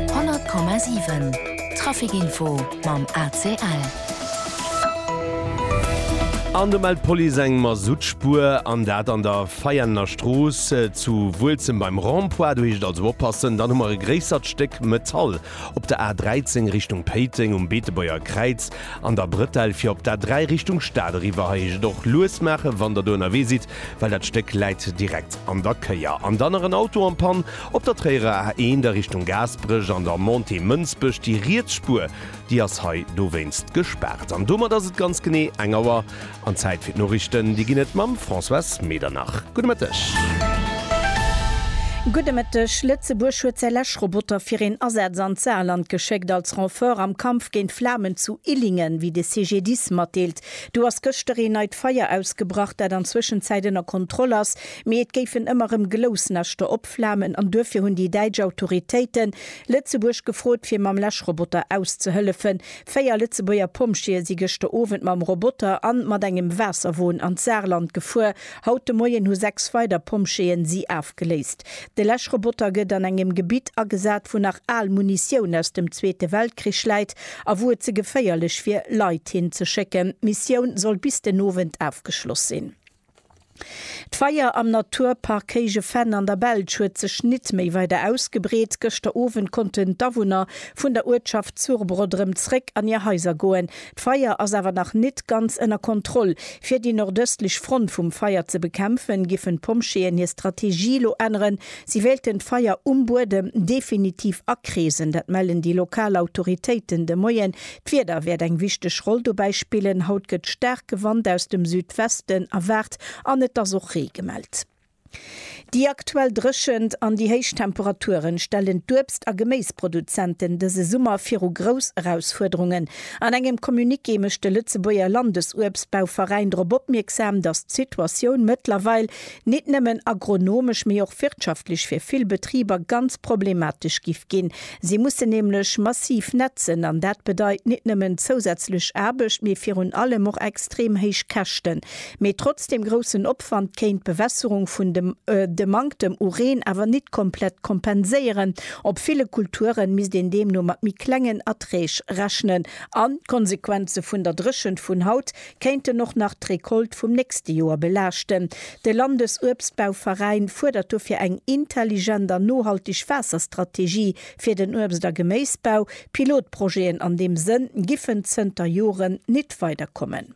100,7 Trafic Info mam ACL. An do mellt d'Police eng Masuttspuer, an dat an der Veianener Strooss zu Wuelzem beim Rond-point. Do heescht et also oppassen. Dann hu mer e gréissert Stéck Metall op der A 13 Richtung Péiteng um Beetebuerger Kräiz an der Brettell fir op d'A 3 Richtung Stad eriwwer. Hei heescht et och lues maachen, wann Der do ënnerwee sidd. well dat Stéck läit direkt an der Kéier. An dann nach en Auto am Pann op der Tréierer A1 a Richtung Gaasperech an der Montée Mënsbech. Déi riets Spuer, déi ass hei dowéinst gespaart. An domat ass et ganz genee eng Auer an Zäit fir d'Norichten. Déi ginn et mam Françoise Medernach. Gudde Mëtteg. Gudde Mëtteg. Lëtzebuerg huet säi Läschroboter fir een Asaz an d'Saarland geschéckt, als Renfort am Kampf géint d'Flamen zu Illingen, wéi de CGDIS matdeelt. Do ass gëschter een neit Feier ausgebrach, dat an Zwëschenzäit ënner Kontroll ass, mee et géifen ëmmer rëm Glousnäschter opflamen an duerfir hunn déi däitsch Autoritéiten Lëtzebuerg gefrot, fir mam Läschroboter auszehëllefen. Véier Lëtzebuerger Pompjeeë si gëschter Owend mam Roboter an mat engem Waasserwon an d'Saarland gefuer. Haut de Moien hu sechs weider Pompjeeën si afgeléist. De Läschroboter gëtt an engem Gebitt agesat, wou nach al Munitioun aus dem Zweete Weltkrich läit a wou et ze geféierlech wier, Leit hin ze schécken. D'Missioun soll bis den Owend ofgeschloss sinn. D'Feier am Naturpark Héije Venn an der Belsch huet sech nit méi weider ausgebreet. Gëschter Owend konnten d'Awunner vun der Uertschaft Zurbrodd rëm zréck an hir Haiser goen. D'Feier ass awer nach nit ganz ënner Kontroll. Fir déi nordëstlech Front vum Feier ze bekämpfen, giffen d'Pompjeeën hir Strategie elo änneren. Si wéilten d'Feier um Buedem definitiv akreesen. Dat mellen déi lokal Autoritéiten de Moien. D'Wieder wäert eng wichteg Roll dobäi spillen. Haut gëtt staarke Wand aus dem Südwesten erwaart an et ass och Ree gemellt. Déi aktuell Dréchent an déi héich Temperaturen stellen d'Uebst a Geméisproduzenten dëse Summer viru grouss Erausfuerderungen. An engem Communiqué mécht de Lëtzebuerger Landesuebstbauveräin drop opmierksam, datt d'Situatioun mëttlerweil nit nëmmen agronomesch, mee och wirtschaftlech fir vill Betriber ganz problematesch giff ginn. Si mussen nämlech massiv nätzen an dat bedeit nit nëmmen zousätzlech Aarbecht, mee virun allem och extrem héich Käschten. Mee trotz dem groussen Opwand kéint d'Bewässerung vun dem de Manktem u Reen awer nit komplett kompenséieren. Op ville Kulturen misst een deemno mat méi klengen Erträg rechnen. An d'Konsequenze vun der Dréchent vun haut kéinten och nach d'Recolte vum nächste Joer belaaschten. De Landesuebstbauveräin fuerdert dofir eng intelligent an nohaltig Waasserstrategie fir den Uebst a Geméisbau. Pilotprojeten an deem Sënn giffen zënter Joren nit weiderkommen.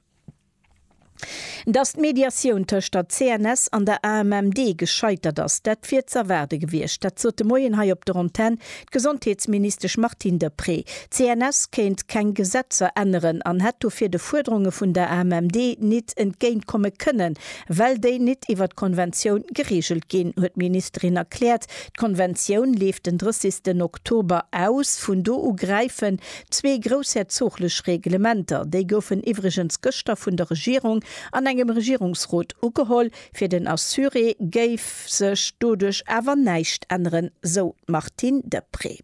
Datt d'Mediatioun tëscht der CNS an der AMMD gescheitert ass, dat wier z'erwaarde gewiescht. Dat sot de Moien hei op der Antenn d'Gesondheetsministesch Martine Deprez. D'CNS kéint keng Gesetzer änneren an hätt dofir de Fuerderunge vun der AMMD nit entgéint komme kënnen, well déi nit iwwer d'Konventioun gereegelt ginn, huet d'Ministerin erkläert. D'Konventioun leeft den 30 Oktober aus. Vun do u gräifen Zwee groussherzoglech Reglementer, déi goufen iwwregens gëschter vun der Regierung an engem Regierungsrot ugeholl, fir den Assuré géif sech doduerch awer näischt änneren, sou d'Martine Deprez.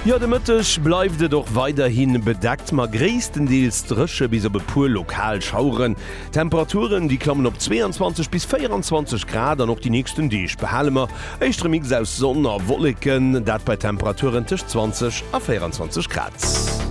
Jo, de Mëtteg bleift et och weiderhi bedeckt, ma gréisstendeels dréche bis op e puer lokal Schaueren. Temperaturen déi klammen op 22 bis 24 Grad an och déi nächsten Deeg behale mer éischte Mix aus Sonn a Wolleken, dat bei Temperaturen tëscht 20 a 24 Grad.